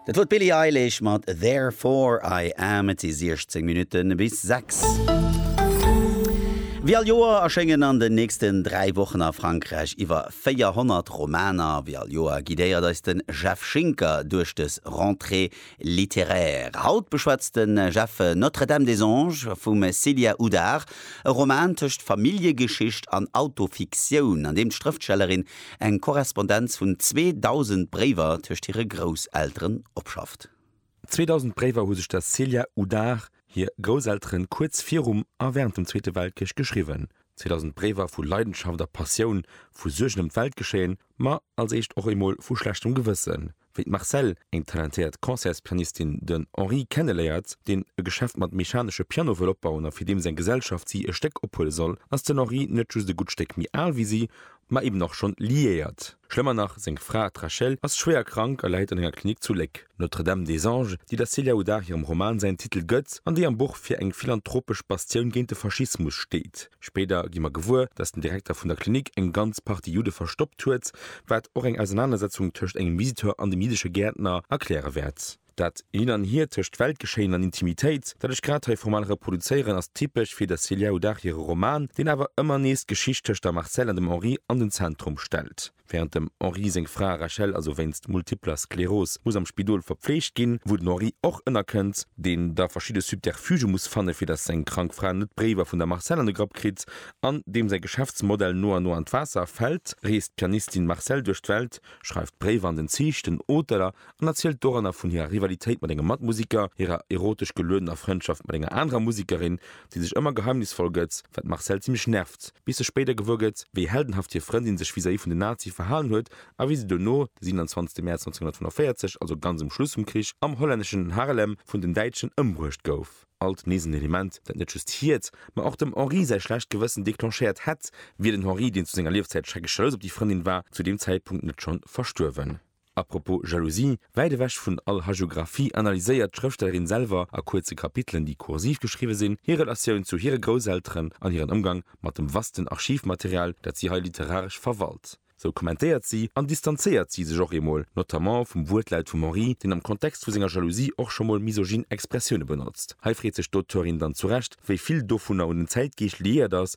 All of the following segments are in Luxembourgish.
Dat wor d'Billie Eilish mat Therefore I Am. Et si 16 Minutte bis 6. Wéi all Joer erschéngen an den nächsten 3 Wochen a Frankräich iwwer 400 Romaner. Wéi all Joer guidéiert eis den Jeff Schinker duerch dës Rentrée. Littéraire. Haut beschwätzt de Jeff Notre-Dame des Anges vum Célia Houdart, e Roman tëscht Familljegeschicht an Autofiktioun, an deem d'Schrëftstellerin eng Korrespondenz vun 2.000 Bréiwer tëscht hire Grousselteren opschafft. 2.000 Bréiwer hu sech der Célia Houdart hir Grousselteren kuerz virum a wärend dem Zweete Weltkrich geschriwwen. 2.000 Bréiwer vu Leidenschaft a Passioun, vu Suergen ëm d'Weltgeschéien, ma als éischt och emol vu schlechtem Gewëssen. Wéi d'Marcelle, eng talentéiert Concertspianistin, den Henri kenneléiert, deen e Geschäft mat mechanesche Piano wëll opbauen a fir deem seng Gesellschaft si e Stéck ophuele soll, ass den Henri net just e gutt Stéck méi al wéi si, ma eben och schonn liéiert. Schlëmmer nach, seng Fra, d'Rachel, ass schwéier krank a läit an enger Klinik zu Léck. Notre-Dame des Anges, déi der Célia Houdard hirem Roman säin Titel gëtt an déi am Buch fir eng philanthropesch Bastioun géint de Faschismus steet, Spéider gi mer gewuer, datt den Direkter vun der Klinik eng ganz Partie Judde verstoppt huet, wat och eng Ausernanersetzung tëscht engem Visiteur an dem jiddesche Gäertner erkläre wäert. Dat Hin an Hier tëscht Weltgeschéien an Intimitéit, dat ech grad hei formal reproduzéieren, ass typesch fir der Celia O'Dach hire Roman, deen awer ëmmer nees d'Geschicht tëscht der Marcelle an dem Henri an den Zentrum stellt. Wärend dem Henri seng Fra Rachel also wéinst multipler Skleros muss am Spidol verpfleegt ginn, wou den Henri och ënnerkënnt, deen da verschidde Subterfuge muss fanne fir datt seng krank Fra net d'Bréiwer vun der Marcelle an de Grapp kritt, an deem säi Geschäftsmodell no an no an d'Waasser fält, reest d'Pianistin Marcelle duerch d'Welt, schreift Bréiwer an den Zich, den Hoteller, an erzielt doranner vun hirer Rivalitéit mat engem Matmusiker, hirer erotesch geluedener Frëndschaft mat enger anerer Musikerin, déi sech ëmmer geheimnisvoll gëtt, wat d'Marcelle zimmlech nervt, bis se spéider gewuer gëtt, wéi heldenhaft hir Frëndin sech vis-à-vis vun den Nazie verhalen huet a wéi se dono, de 27 Mäerz 1945, also ganz um Schluss vum Krich, am hollänneschen Haarlem vun den Däitschen ëmbruecht gouf. Alt nees en Element, dat net just hiert, ma och dem Henri säi schlecht Gewëssen declenchéiert hätt, wier den Henri, deen zu senger Liefzäit schreckesch jalous op déi Frëndin war, zu deem Zäitpunkt net schonn verstuerwen. A propos Jalousie, Wäit ewech vun all Hagiographie analyséiert d'Schrëfstellerin selwer a kuerze Kapitelen, déi kursiv geschriwwe sinn, hir Relatioun zu hire Grousselteren an hiren Ëmgang mat dem vasten Archivmaterial, dat si hei literaresch verwalt. Sou kommentéiert si an distanzéiert si sech och eemol, notamment vum Wuertlaut vum Henri, deen am Kontext vu senger Jalousie och scho mol misogyn Expressioune benotzt. Hei freet sech d'Auteurin dann zu Recht, wéi vill dovunner un den Zäitgeescht liéiert ass,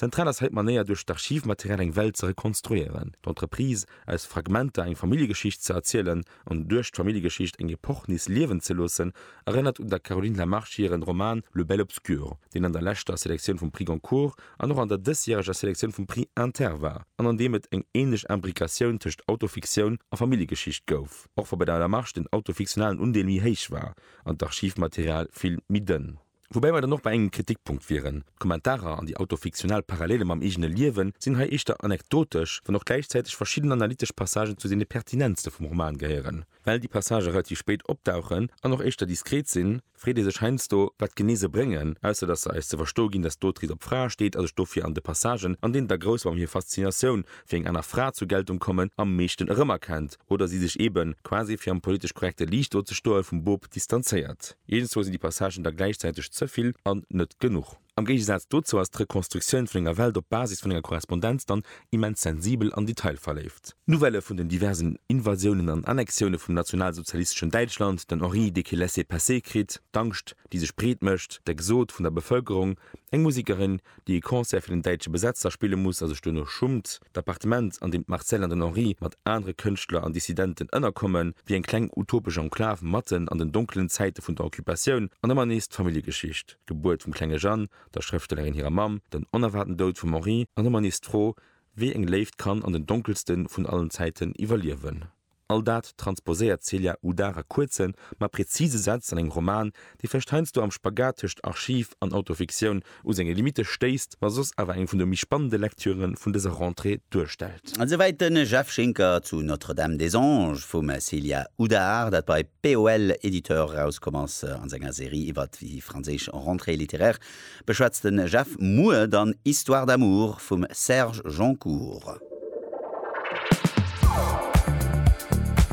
Zentral ass hei d'Manéier duerch d'Archivmaterial eng Welt ze rekonstruieren, d'Entreprise aus Fragmenter eng Familljegeschicht ze erzielen an duerch d'Familljegeschicht eng Epoch nees liewen ze loossen, erënnert un der Caroline Lamarche hiren Roman Le bel obscur, deen an der leschter Selektioun vum Prix Goncourt an och an der dësjäreger Selektioun vum Prix Inter war an an deem et eng ähnlech Imbricatioun tëscht Autofiktioun a Familljegeschicht gouf, och wa bei der Lamarche den autofiktionalen Undeel méi héich war an d'Archivmaterial vill méi dënn. Woubäi mer dann och bei engem Kritikpunkt wieren, D'Kommentarer an déi autofiktionell Parallele mam eegene Liewen sinn hei éischter anekdotesch, wann och gläichzäiteg verschidden analytesch Passagen zu deene pertinentste vum Roman gehéieren. Well déi Passagë relativ spéit opdauchen an och éischter diskret sinn, freet ee sech heiansdo, wat genee se bréngen, ausser datt se eis ze verstoe ginn, datt d'Autrice op Frae steet a sech dofir an de Passagen, an deenen d'Ergroussung an hir Faszinatioun fir eng aner Fra zur Geltung kommen, am meeschten erëmerkennt, oder si sech eeben, quasi fir am politesch korrekte Liicht do ze stoen, vum Bop distanzéiert. Iergendzwou sinn déi Passagen da gläichzäiteg ze vill an net genuch. Am Géigesaz dozou ass d'Rekonstruktioun vun enger Welt op Basis vun enger Korrespondenz dann immens sensibel an detailverléift. D'Nouvellë vun den diversen Invasiounen an Annexioune vum nationalsozialisteschen Däitschland, den Henri dee kee laisser-passer kritt, d'Angscht, déi sech breet mécht, d'Exode vun der Bevëlkerung, eng Musekerin, déi e Concert fir den däitsche Besetzer spille muss a sech duerno schummt, d'Appartement, an deem d'Marcelle an den Henri mat anere Kënschtler an Dissidenten ënnerkommen, wier eng kleng utopesch Enklav matten an den donkelen Zäite vun der Occupatioun, an ëmmer nees d'Familljegeschicht, d'Gebuert vum klenge Jeanne, der Schrëftstellerin hirer Mamm, den onerwaarten Doud vum Henri, an ëmmer nees d'Fro, wéi eng Léift kann an den donkelste vun allen Zäiten iwwerliewen. All dat transposéiert d'Celia Udar a kuerzen, ma präzise Sätz an engem Roman, dee vläicht heiansdo am Spagat tëscht Archiv an Autofiktioun u senge Limitte stéisst, ma soss awer eng vun de méi spannende Lektüre vun dëser Rentrée duerstellt. Esouwäit de Jeff Schinker zu Notre-Dame des Anges vum Celia Udar, dat bei POL Editeurs erauskomm ass, a senger Serie iwwert déi franséisch Rentrée littéraire. Beschwätzt de Jeff muer dann Histoire d'amour vum Serge Joncour.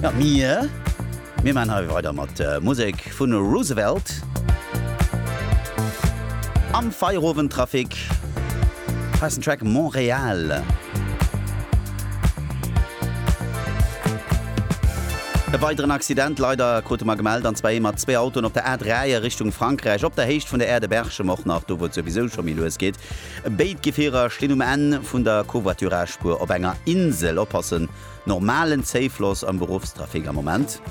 Ja, mir, mir maan hei weider mat Musek vun Roosevelt am Feierowendtrafic heissen Track Montréal. E weideren Accident, leider, krute mer gemellt, an zwar ee mat zwee Autoen op der A3 a Richtung Frankräich, op der Héicht vun der Aire de Berchem och nach, do wou et souwisou scho méi lues geet. Béid Gefierer stinn um Enn vun der Covoiturage-Spuer op enger Insel. Oppassen, normalen Zéifloss am Beruffstrafic am Moment.